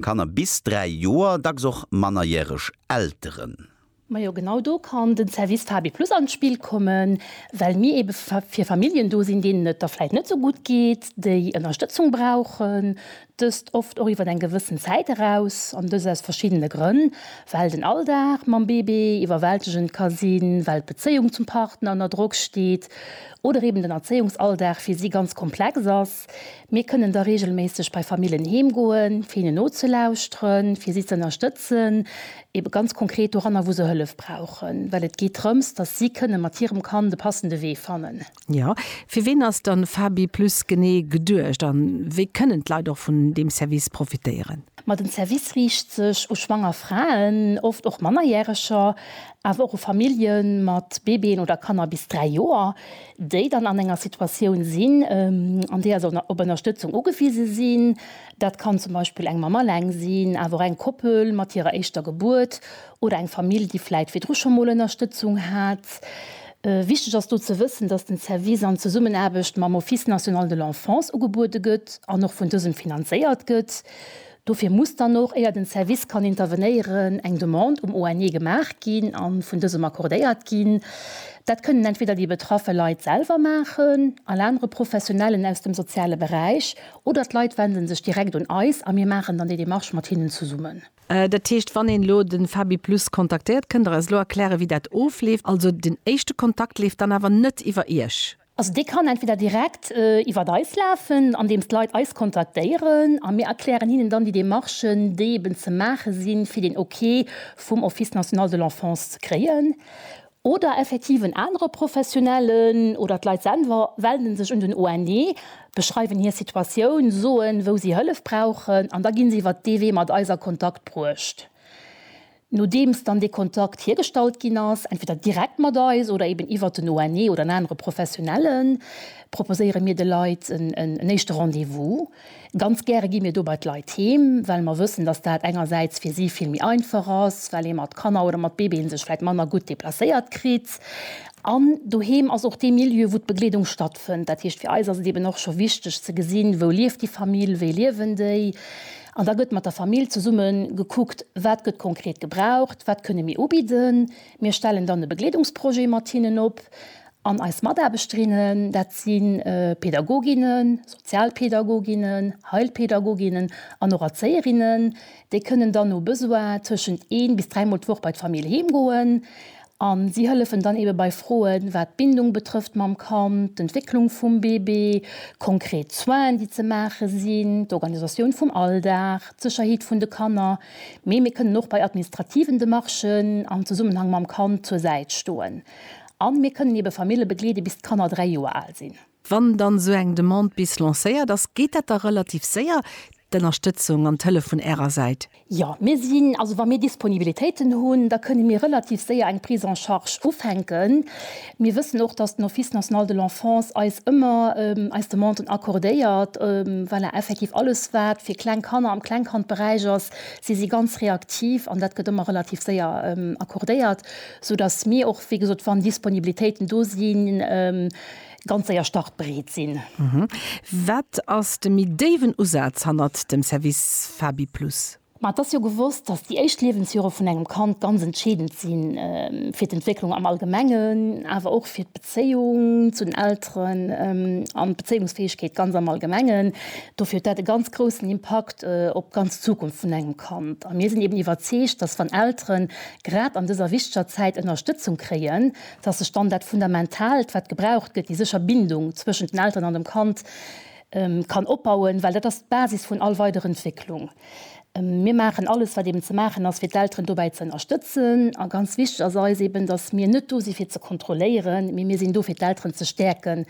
Kanner bis 3 Joer, dacks och mannerjäreg Elteren. Majo genau do kann den Service Fabi Plus an d'Spill kommen, well mir eben fir Familljen do sinn deenen et da vläit net sou gutt geet, déi Ënnerstëtzung brauchen, dëst oft och iwwer eng gewëssen Zäit eraus an dëst aus verschiddene Grënn, well den Alldag mam Bébé iwwerwältegend ka sinn, well d'Bezéiung zum Partner ënner Drock steet oder eben den Erzéiungsalldag fir si ganz komplex ass. Mir kënnen da reegelméisseg bei Famillen heem goen, fir hinnen nozelauschteren, fir si ze ënnerstëtzen, ebe ganz konkret doranner, wou se Hëllef brauchen, well et geet drëms, dass si kënne mat hirem Kand e passende Wee fannen. Jo, fir wien ass dann FabiPlus genee geduecht a wéi kënnen d'Leit och vun deem Service profitéieren? Ma den Service riicht sech u schwanger Fraen, oft och Mannerjäreger, awer och u Famillje mat Bébéen oder Kanner bis 3 Joer. déi dann an enger Situatioun sinn, an deeër se op Ënnerstëtzung ugewise sinn, dat kann zum Beispill eng Mamm alleng sinn, awer och eng Koppel mat hirer éischter Gebuert oder eng Famill, déi vläit virdru scho mol Ënnerstëtzung hat. Wichteg ass do ze wëssen, dass den Service an Zesummenaarbecht mam Office national de l'enfance ugebuede gëtt an och vun dësem finanzéiert gëtt. Dofir muss dann och, éier den Service kann intervenéieren, eng Demande um ONE gemaach ginn an vun dësem accordéiert ginn. Dat kënnen entweder déi betraffe Leit selwer maachen, all anere Professionellen aus dem soziale Beräich oder d'Leit wenden sech direkt un eis a mir maachen dann déi Demarche mat hinnen zesummen. Dat heescht, wann een elo den Fabiplus kontaktéiert, kënnt der eis elo erklären, wéi dat ofleeft? Also den éischte Kontakt leeft dann awer net iwwer Iech? Also dee kann entweder direkt iwwert eis lafen, andeems d'Leit eis kontaktéieren a mir erklären hinnen dann déi Demarchen, déi eben ze maache sinn, fir den Ok vum Office national de l'enfance ze kréien. Oder effektiv en anere Professionellen oder d'Leit selwer wenden sech un den ONE, beschreiwen hir Situatioun, soen, wou si Hëllef brauchen an da gi se iwwert dee Wee mat eis a Kontakt bruecht. Nodeems dann dee Kontakt hiergestallt ginn ass, entweder direkt mat eis oder eben iwwert den ONE oder en anere Professionellen, proposéiere mir de Leit en éischte Rendez-vous. Ganz gäre gi mir do bei d'Leit heem, well mer wëssen, dass dat engersäits fir si vill méi einfach ass, well ee mat Kanner oder mat Bébéen sech vläicht manner gutt deplacéiert kritt. An doheem ass och dee Milieu, wou d'Begleedung stattfënnt. Dat heescht, fir eis ass et eben och scho wichteg ze gesinn, wou lieft déi Famill, wéi liewen déi. An da gëtt mat der Famill zesumme gekuckt, wat gëtt konkret gebraucht, wat kënne mir ubidden. Mir stellen dann e Begleedungsprojet mat hinnen op. An eis Mataarbechterinnen, dat si Pädagoginnen, Sozialpädagoginnen, Heilpädagoginnen an och Erzéierinnen, déi kënnen dann no Besoin tëschent ee bis dräimol d'Woch bei d'Famill heemgoen. A si hëllefen dann eebe bei Froen, wat d'Bindung betrëfft mam Kand, d'Entwécklung vum Bébé, konkret Soinen, déi ze maache sinn, d'Organisatioun vum Alldag, d'Sécherheet vun de Kanner. Mee mir kënnen och bei administrativen Demarchen am Zesummenhang mam Kand zur Säit stoen. A mir kënnen eebe Famille begleede bis d'Kanner dräi Joer al sinn. Wann dann esou eng Demande bis lancéiert ass, geet dat da relativ séier, d'Ënnerstëtzung an d'Hëllef vun Ärer Säit? Jo, mir sinn, also wa mir Disponibilitéiten hunn, da kënne mir relativ séier eng Prise en charge ufänken. Mir wëssen och, dass den Office national de l'enfance eis ëmmer eis Demanden accordéiert. Voilà, effektiv alles wat fir kleng Kanner am Klengkandberäich ass, si si ganz reaktiv an dat gëtt ëmmer relativ séier accordéiert, sou dass mir och, wéi gesot, wann Disponibilitéiten do sinn, ganz séier startbereet sinn. Wat ass de méi déiwen Usaz hannert dem Service FabiPlus? Ma et ass jo gewosst, dass déi éischt Liewensjore vun engem Kand ganz entscheedend si fir d'Entwécklung am Allgemengen, awer och fir d'Bezéiung zu den Elteren an d'Bezéiungsfäegkeet ganz am Allgemengen. Dofir huet dat e ganz groussen Impakt op d'ganz Zukunft vun engem Kand. A mir sinn eben iwwerzeegt, dass wann Elteren grad an dëser wichteger Zäit Ënnerstëtzung kréien, dass sech dann dat Fundamentaalt, wat gebraucht gëtt, déi sécher Bindung zwëschent den Elteren an dem Kand, kann opbauen, well dat ass d'Basis vun all weider Entwécklung. Mir maachen alles, wat eben ze maachen ass, fir d'Elteren dobäi ze ënnerstëtzen. A ganz wichteg ass eis eben, dass mir net do si fir ze kontrolléieren, mee mir sinn do, fir d'Elteren ze stäerken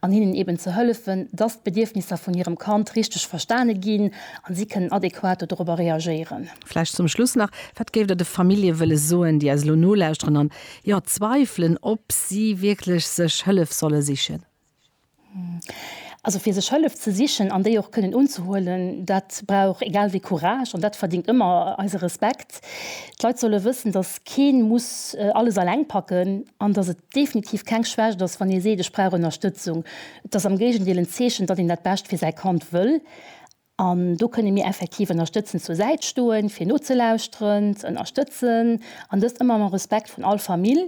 an hinnen eben ze hëllefen, dass d'Bedierfnisser vun hirem Kand richteg verstane ginn a si kënnen adequat dorobber reagéieren. Vläicht zum Schluss nach, Wat géift Der de Famillje wëlle soen, déi eis elo nolauschteren an Jo, zweifelen op si wierklech sech Hëllef solle sichen. Also fir sech Hëllef ze sichen an déi och kënnen unzehuelen, dat brauch egal wéi Courage an dat verdingt ëmmer eise Respekt. D'Leit solle wëssen, datt kee muss alles alleng packen an datt et definitiv keng Schwächt ass, wann ee seet, ech brauch Ënnerstëtzung. Et ass am Géigendeel en Zeechen, datt een dat Bescht fir säi Kand wëll. An do kënne mir effektiv ënnerstëtzend zur Säit stoen, fir nozelauschteren, ze ënnerstëtzen, an dëst ëmmer mam Respekt vun all Famill.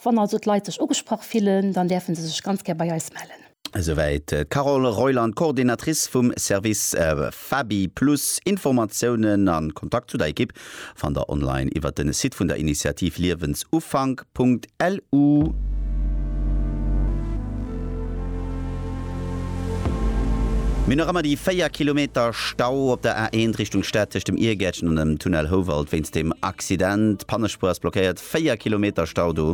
Wann also d'Leit sech ugesprach fillen, dann däerfe se sech ganz gär bei eis mellen. Esouwäit d'Carole Reuland, Coordinatrice vum Service Fabi-Plus. Informatiounen a Kontakt zu der Ekipp Fannt der online iwwert den Site vun der Initiativ liewensufank.lu. Mee nach ëmmer déi 4 Kilometer Stau op der A1 Richtung Stad tëscht dem Irgäertchen an dem Tunnel Houwald wéinst dem Accident. D'Pannespuer ass blockéiert, 4 Kilometer Stau do.